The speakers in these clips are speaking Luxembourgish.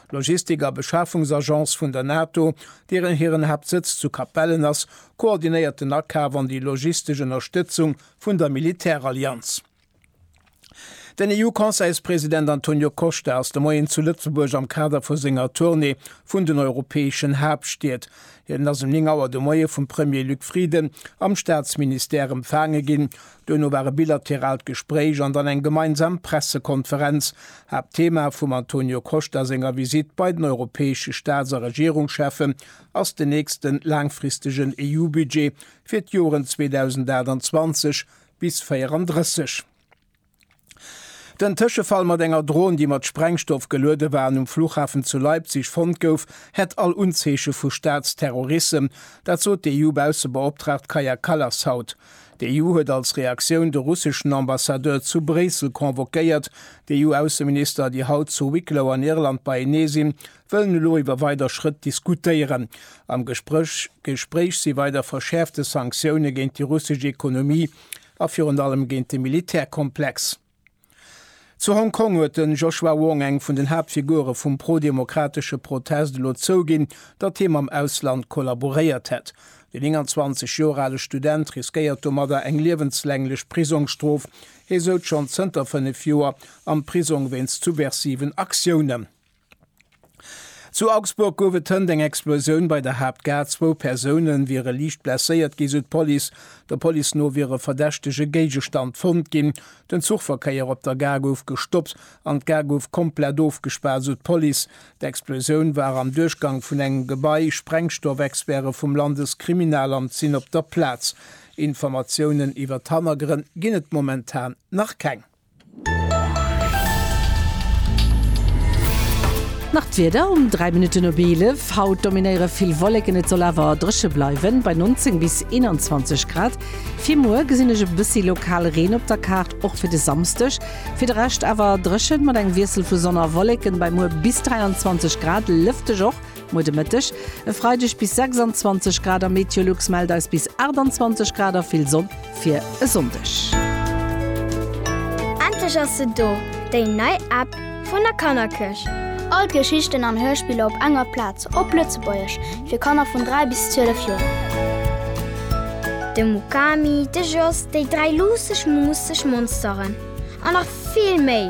D'Logistik a Beschafungsagence vun der NATO, deeren hiren Haaptsëtz zu Capellen ass, koordinéiert den Akaf an déi logistesch Ënnerstëtzung vun der Militärallianz. Den EU-Conseilspresident Antonio Costa ass de Moien zu Lëtzebuerg am Kader vu senger Tournée vun den europäeschen Haaptstied. Hien ass um 9 Auer de Moie vum Premier Luc Frieden am Staatsministère empfaange ginn, Duerno war e bilateraalt Gespréich an dann eng gemeinsam Pressekonferenz. Haaptthema vum Antonio Costa senger Visitt bei den europäesche Staats a Regierungscheffen ass den nächste laangfristegen EU-Budget fir d'Joren 2028 bis 34. Den Tëschefall mat enger Dron, déi mat Sprengstoff geluede war an um Fluchhafen zu Leipzig fonnt gouf, hätt all Unzeeche vu Staatsterrorissem. Dat sot d'EU-Baussebeoptraagt Kaja Kallas haut. D'EU huet als Reaktioun de russeschen Ambassadeur zu Bréissel convoquéiert. D'EU-Ausseminister, déi haut zu Wicklow an Irland beienee sinn, wëllen elo iwwer weider Schrëtt diskutéieren. Am Gespréch si weider verschäerfte Sanktioune géint déi russesch Ekonomie, A virun allem géint de Militärkomplex. Zu Hong Kong huet de Joshua Wong, eng vun den Haaptfigure vum prodemokratesche Protest, elo zouginn, datt hie mam Ausland kollaboréiert hätt. De 29 Joer ale Student riskéiert domadder eng liewenslänglech Prisongsstrof. Hie souz schonn zënter fënnef Joer am Prisong wéinst subversiven Aktiounen. Zu Augsburg gouf et hënt eng Explosioun bei der Haaptgare. Zwou Persoune wiere liicht blesséiert ginn, sou d'Police. Der Police no wier e verdächtege Géigestand fonnt ginn. Den Zuchverkéier op der Gare gouf gestoppt an d'Gare gouf komplett ofgespaart, sou d'Police. D'Explosioun war am Duerchgang vun engem Gebai. Sprengstoffexperte vum Landeskriminalamt sinn op der Plaz. Informatiounen iwwer d'Hannergrënn ginn et momentan nach keng. Nach d'Wieder um 3 Minutten op 11, Haut dominéiere vill Wolleken, et soll awer dréche bleiwen, bei 19 bis 21 Grad. Fir muer gesinn ech e bëssi lokal Reen op der Kaart, och fir de Samsdeg. Fir de Rescht awer dréchen, mat engem Wiessel vu Sonn a Wolleken, bei muer bis 23 Grad, lëfteg och. Muer de Mëtteg e Freideg bis 26 Grad a Meteolux mellt eis bis 28 Grad a vill Sonn fir e Sonndeg. Endlech ass se do, déi nei App vun der Kannerkëscht! All d'Geschichten an Hörspiller op enger Plaz, op Lëtzebuergesch, fir Kanner vun 3 bis 12 Joer. De Mukami, de Jos, déi dräi luusseg, muusseg Monsteren an nach vill méi!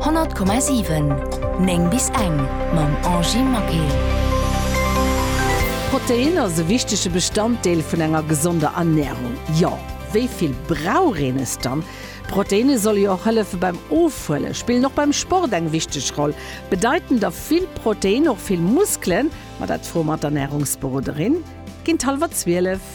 100,7 9 bis eng mam Angie Maquet. Protein ass e wichtege Bestanddeel vun enger gesonder Ernährung. Jo, wéi vill brauch een es dann? Proteine solle jo och hëllefe beim Ofhuelen, spillen och beim Sport eng wichteg Roll. Bedeiten da vill Protein och vill Muskelen? Ma dat froe mer d'Ernährungsberoderin. Ginn d'halwer zwielef.